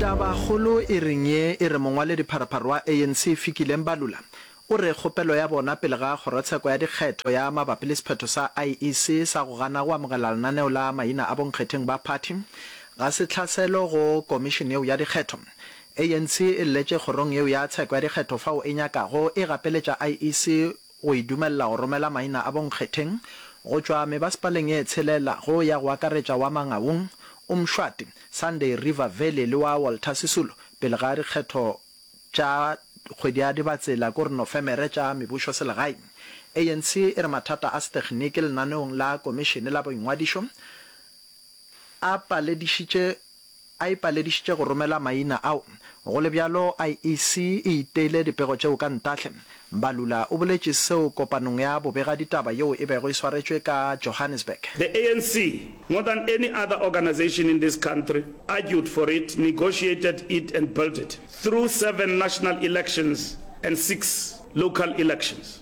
Tabakgolo e reng ye e re mongwaledipharapharwa wa ANC Fikile Mbalula o re kgopelo ya bona pele ga kgorotsheko ya dikgetho ya mabapi le sephetho sa IEC sa go gana go amogela lenaneo la maina a bonkgetheng ba phathi ga se tlhaselo go komišene yeo ya dikgetho. ANC e lletše kgorong yeo ya tsheko ya dikgetho fao e nyakago e gapeletša IEC go e dumelela go romela maina a bonkgetheng go tšwa mebasepaleng e tshelela go ya go akaretša wa Mangaung, Umshwati, Sunday River Valley le wa Walter Sisulu pele ga dikgetho tša kgwedi ya Dibatsela kore Nofemere tša mebušoselegae. ANC e re mathata a setekginiki lenaneong la Komišene la Boingwadišo a paledišitše a ipaledišitše go romela maina ao. Go le bjalo, IEC e iteile dipego tšeo ka ntahle. Mbalula o boletše seo kopanong ya bobegaditaba yeo e bego e swaretšwe ka Johannesburg. The ANC, more than any other organisation in this country, argued for it, negotiated it and built it through seven national elections and six local elections.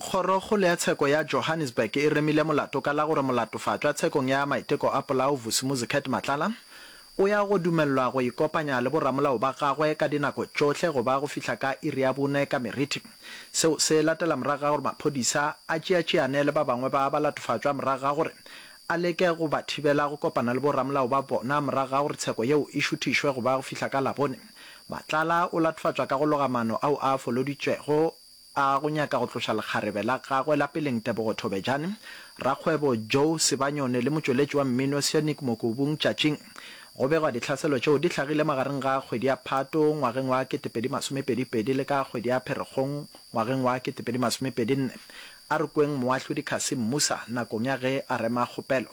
Kgorokgolo ya Tsheko ya Johannesburg e remile molato ka la gore molatofatšwa tshekong ya maiteko a polao Vusi Muzicat Matlala o ya go dumelelwa go ikopanya le boramolao ba gagwe ka dinako tšohle go ba go fihla ka iri ya bone ka meriti. Seo se latela morago ga gore maphodisa a tšeatšeane le ba bangwe ba balatofatšwa morago ga gore a leke go ba thibela go kopana le boramolao ba bona morago ga gore tsheko yeo e šuthišwe go ba go fihla ka Labone. Matlala o latofatšwa ka go loga maano ao a foloditšwego A go nyaka go tloša lekgarebe la gagwe la peleng Tebogo Thobejane, rakgwebo Joe Sebanyone le motšweletši wa mmino Sonic Mokobung tšatšing. Go begwa dihlaselo tšeo di hlagile magareng ga kgwedi ya Phato ngwageng wa 2022 le ka kgwedi ya Pherekgong ngwageng wa 2024. A re kweng Moahlodi Cassim Musa nakong ya ge a rema kgopelo.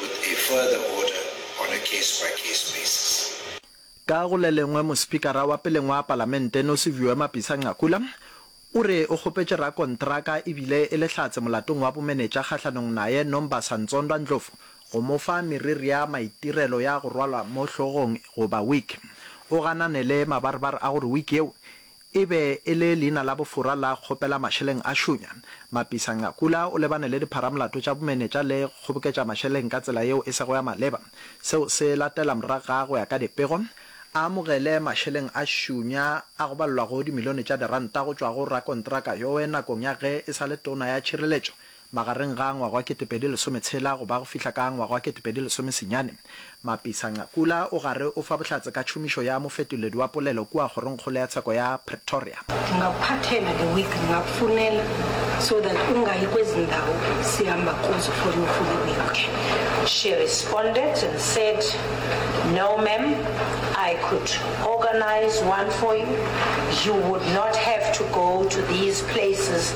with a further order on a case by case basis. Ka go le lengwe Mospikara wa peleng wa Palamente Nosiviwe Mapisa-Nqakula o re o kgopetše rakontraka e bile e le hlatse molatong wa bomenetša kgahlanong naye Nombasa Ntsondwa Ndlovu go mo fa meriria maitirelo ya go rwalwa mo hlogong goba wig o ganane le mabarebar a gore wig yeo E be e le leina la bofora la kgopela mašeleng a šunya. Mapisa Ngakula o lebane le dipharamolato tša bomenetša le kgoboketša mašeleng ka tsela yeo e sego ya maleba. Seo se latela moraga go ya ka dipego. A amogele mašeleng a šunya a go balelwa go dimilione tša diranta go tšwa go rakontraka yoe nakong ya ge e sa le tona ya tšhireletšo, Magareng ga ngwaga wa ketepedi lesometshela go ba go fihla ka ngwaga wa ketepedi lesomesenyane, Mapisa-Nqakula o gare o fa bohlatse ka tšhomišo ya mofetoledi wa polelo kua Kgorongkgolo ya Tsheko ya Pretoria. Ungaphathela the week ngakfunela so that ungayi kwezi ndawo sihamba kuzo for your fully week She responded and said no ma'am I could organise one for you you would not have to go to these places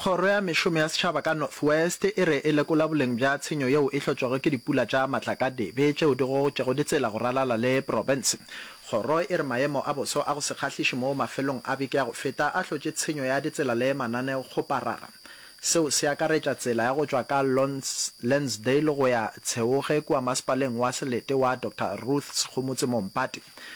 Kgoro ya Mešomo ya Setšhaba ka North West e re e lekola boleng bja tshenyo yeo e hlotšwego ke dipula tša matlakadibe tšeo di gogotšego ditsela go ralala le profense. Kgoro e re maemo a boso a go se kgahliše mo mafelong a beke ya go feta a hlotše tshenyo ya ditsela le mananeokgoparara. Seo se akaretša tsela ya go tšwa ka Lonsdale go ya Tsheoge kua Masepaleng wa Selete wa Doctor Ruth Sekgomotse mo Mpati,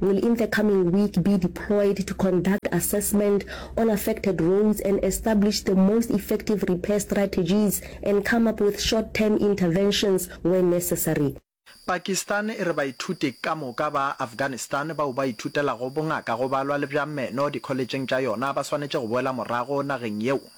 will in the coming week be deployed to conduct assessment on affected roads and establish the most effective repair strategies and come up with short term interventions where necessary. Pakistan e re baithuti ka moka ba Afghanistan bao ba ithutelago bongaka go balwa le bja meno dikholetšheng tša yona ba swanetše go boela morago nageng yeo.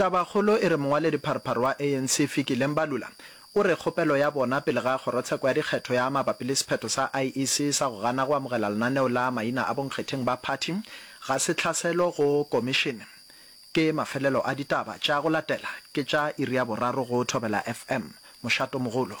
Tabakgolo e re mongwaledipharphar wa ANC Fikile Mbalula o re kgopelo ya bona pele ga kgorotsheko ya dikgetho ya mabapi le sephetho sa IEC sa go gana go amogela lenaneo la maina a bonkgetheng ba phathi ga se tlhaselo go komišene. Ke mafelelo a ditaba tša go latela ke tša iri ya boraro go Thobela FM. Mošatomogolo.